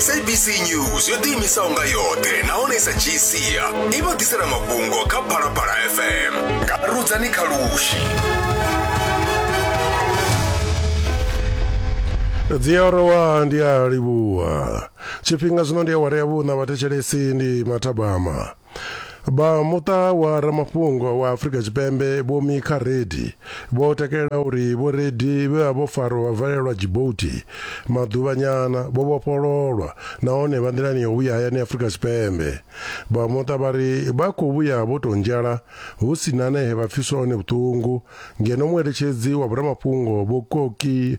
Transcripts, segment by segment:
sabc news yo ḓiimisaho nga yoṱhe nahone i sa dzhii sia i vha ḓisela mafhungo kha phalaphala fm nga rudzani kha lushi dzi a rowa ndi a livhuwa tshifhinga zwino ndi awara ya vhuṋa vhathetshelesi ndi mathabama Vha muṱa wa ramafhungo wa Afrika Tshipembe Vho Mika Reddy vho takalela uri Vho Reddy vhe vha vho farwa vha valelwa Djibouti maḓuvhanyana vho vhofhololwa nahone vha nḓilani ya u vhuya hayani Afrika Tshipembe. Vha muṱa vha ri vha khou vhuya vho tou nzhala hu si na na he vha pfiswa hone vhuṱungu ngeno mueletshedzi wa vho ramafhungo Vho Koki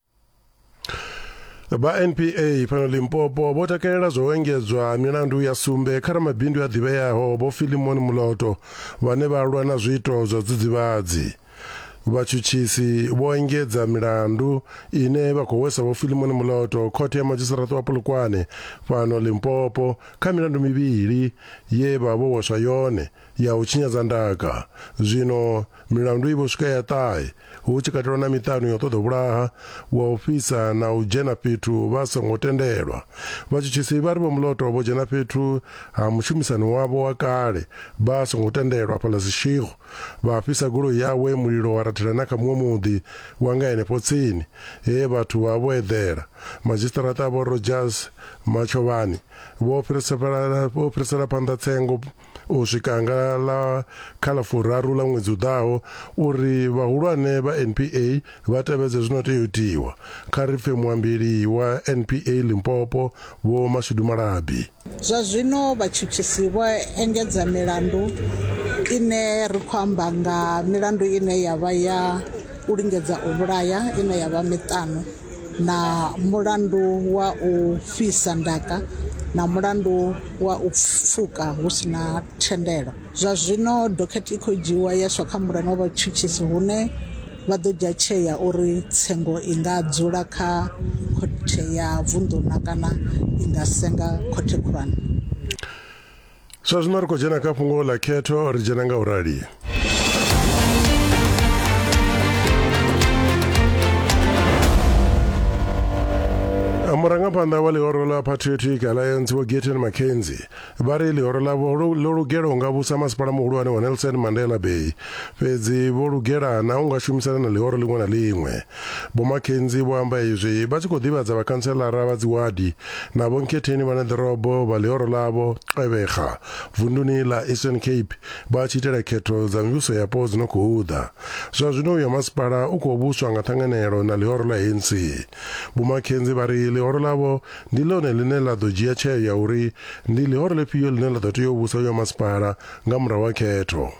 vha npa fhano limpopo vho takalela zwo engedzwa milandu ya sumbe kha ramabindu a ḓivheaho vho filimon muloto vhane vha lwa na zwiito zwa dzidzivhadzi vhatshutshisi vho engedza milandu ine vha khou hwesa vho filimon muloto khothe ya madzhisiraṱa wa polokwane fhano limpopo kha milandu mivhili ye vha vho hweswa yone ya u tshinyadza ndaka. Zwino milandu i vho swika ya ṱahe, hu tshi katelwa na miṱanu ya u ṱoḓa u vhulaha, wa u fhisa na u dzhena fhethu vha songo tendelwa. Vhatshutshisi vha ri Vho Moloto vho dzhena fhethu ha mushumisani wavho wa kale vha songo tendelwa afhaḽa Seshego, vha fhisa goloi yawe mulilo wa rathela na kha muṅwe muḓi wa nga henefho tsini, he vhathu vha vha vho eḓela. Madzhisiṱaraṱa Vho Rodgers Matshovhani vho fhirisela phanḓa tsengo. u swika nga ḽa kha ḽa furaru ḽa ṅwedzi u ḓaho uri vhahulwane vha NPA vha tevhedze zwi no tea u itiwa, kha ri pfe muambeli wa NPA Limpopo Vho Mashudu Malabi. Zwa zwino vhatshutshisi vho engedza milandu ine ri khou amba nga milandu ine ya vha ya u lingedza u vhulaya ine ya vha miṱanu. na mulandu wa u fhisa ndaka na mulandu wa u pfuka hu si na thendelo. Zwa zwino dokhethe i khou dzhiiwa ya iswa kha mulano wa vhatshutshisi hune vha ḓo dzhia tsheo ya uri tsengo i nga dzula kha khothe ya vunḓu na kana i nga senga khothe khulwane. zwa zwino ri khou dzhena kha fhungo ḽa khetho ri dzhena nga u rali murangaphanḓa wa ḽihoro ḽa patriotic alliance vho geten mackenzie vha ri ḽihoro ḽavho ḽo lugela u nga vhusa masipala muhulwane wa nelson mandela bay fhedzi vho lugela na u nga shumisana na ḽihoro ḽiṅwe na ḽiṅwe Vho McKenzie vho amba izwi vha tshi khou ḓivhadza vhakhantselara vha dziwadi na vhonkhetheni vha ne ḓorobo vha ḽihoro ḽavho Gqeberha vunduni ḽa Eastern Cape vha tshi itela khetho dza mivhuso yapo dzi no khou ḓa. Zwa zwino uyo masipala u khou vhuswa nga ṱhanganelo na ḽihoro ḽa ANC. Vho McKenzie vha ri ḽihoro ḽavho ndi ḽone ḽine ḽa ḓo dzhia tsheo ya uri ndi ḽihoro ḽifhio ḽine ḽa ḓo tea u vhusa uyo masipala nga murahu ha khetho.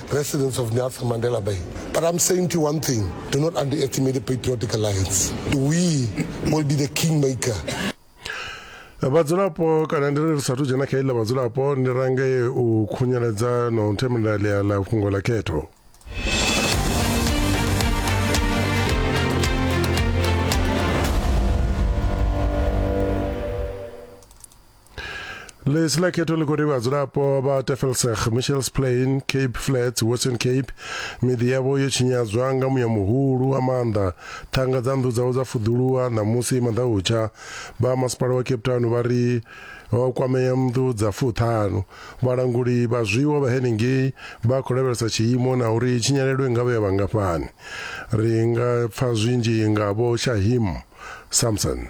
residents of Nelson Mandela Bay. But I'm saying to you one thing, do not underestimate the Patriotic Alliance. We will be the kingmaker. vhadzulapo kana ndi ri sathu dzhena kha iḽa vhadzulapo ndi range u khunyeledza na u themela ḽia ḽa fhungo ḽa khetho ḽisi ḽa khetho ḽi khou ri vhadzulapo vha tefelseg michels plain cape flats western cape miḓi yavho yo tshinyadzwa nga muya muhulu wa maanḓa ṱhanga dza nnḓu dzavho dza fuḓuluwa ṋamusi maḓautsha vha masipala wa cape town vha ri ho kwamea nnḓu dza fuṱhanu vhalanguli vha zwiwo vha henengei vha khou lavhelesa tshiimo na uri tshinyalelo i nga vha ya vhangafhani ri nga pfa zwinzhi nga vho shahim samson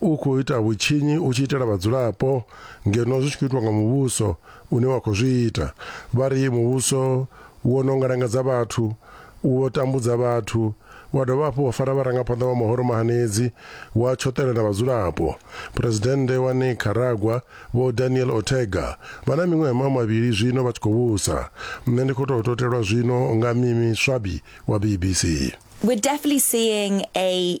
u khou ita vhutshinyi u tshi itela vhadzulapo ngeno zwi tshi khou itwa nga muvhuso une wa khou zwi ita. Vha ri muvhuso wo no ngalangadza vhathu, u vho tambudza vhathu, wa dovha hafhu wa fara vharangaphanḓa vha mahoro mahanedzi, wa tshoṱela na vhadzulapo. Phresidennde wa Nicaragua, Vho Daniel Ortega, vha na miṅwaha ma mavhili zwino vha tshi khou vhusa. Nṋe ndi khou tou totelwa zwino nga Mimi Swabi wa BBC. We're definitely seeing a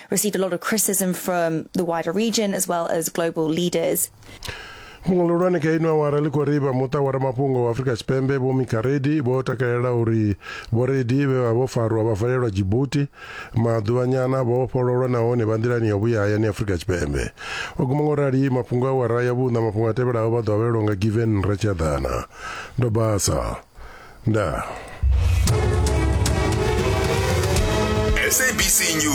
received a lot of criticism from the wider region as well as global leaders. fhungo ḽihulwane kha ino awara ḽi khou ri vha muṱa wa ramafhungo wa afrika tshipembe vho mikaredi vho takalela uri vhoredi vhe vha vho farwa vha valelwa jibuti maḓuvhanyana vho vhofhololwa nahone vha nḓilani ya vhuya hayani afrika tshipembe o guma ngo rali mafhungo a awara ya vhuṋa mafhungo a tevhelaho vha ḓo avhelelwa nga given ratshadana ndo basa ndaa